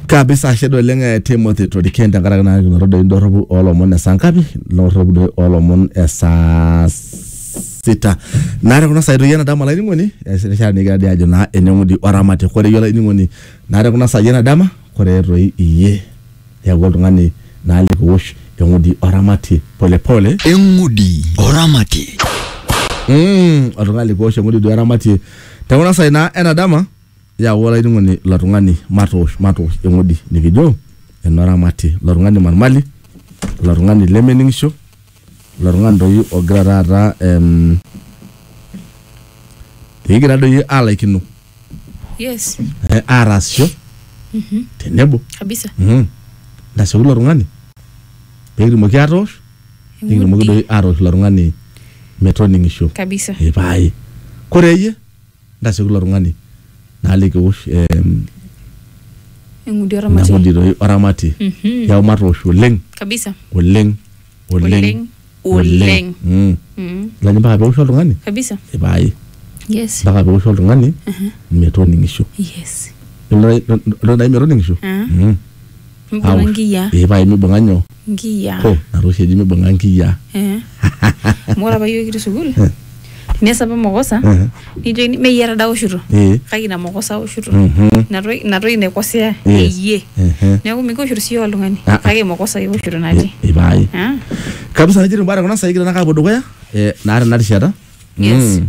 kabisa ashe doi oleng eh, timothy toriken tenkaraki naa kinoto doi indorropu oolomon esaa ngapi indorropu doi oolomon esaa sita naa tekuna saai doi enadama olainining'oni erishata nikigira dii ajo naa eneng'udi oramati kore iyie olainining'oni naa tekuna saai enadama kore toi iyie eeku oltung'ani naa likiwosh eng'udi oramati polepole eng'udi oramati Mm, oltung'ani likiwosh eng'udi duo eramatie tekuna saai naa enadama Yau olainining'oni ilo tung'ani matoosh matoosh eng'udi nikijo enoramati ilo tung'ani marmali ilo tung'ani lemening'isho ilo tung'ani doi ogira taata em, ekigira doi alaikino Yes. eh, aataasisho tenebo Kabisa. Mhm. ntasioki ilo tung'ani peekitumoki atoosh nikitumoki Eng'udi. doi atoosh ilo tung'ani metoning'isho Kabisa. ipae kore iyie Ntasioki ilo tung'ani naaliki eosh eng'udi oramatie eng'udi doi oramatie Mhm. yau matoosh oleng kabisa oleng oleng Oleng, oleng. Mm. Mm, Ilani mpaka peosh oltung'ani kabisa ipaai yes mpaka peosh oltung'ani metoning'isho yes Ilo- ilo- ilo nai metoning'isho Ah. Mm. mbona Aosh. nkiyia Ee, paai mibung'a nyoo nkiyiaa. Hoo, ina toki oshi eji mibung'a nkiyiaa. Eh. Amu ore apa iyiook kitii sukuul, tenias apa mokosa, Eh. nikijokini mee iyie taa aoshuto. Eh. Kake ina mokosa aoshuto. Mhm. Ina toki- ina toki naikosea Yes. iyie. Ehe. Neeku mikioshuto siyie oltung'ani. Ah, ah. Kake mokosa ioshuto natii. Eh, Ipae. Ah. Kabisa nejia etiu imbaa te kuna saai kigira naa aapuo dukuya eh, naa tena rishata. Yes. Mm.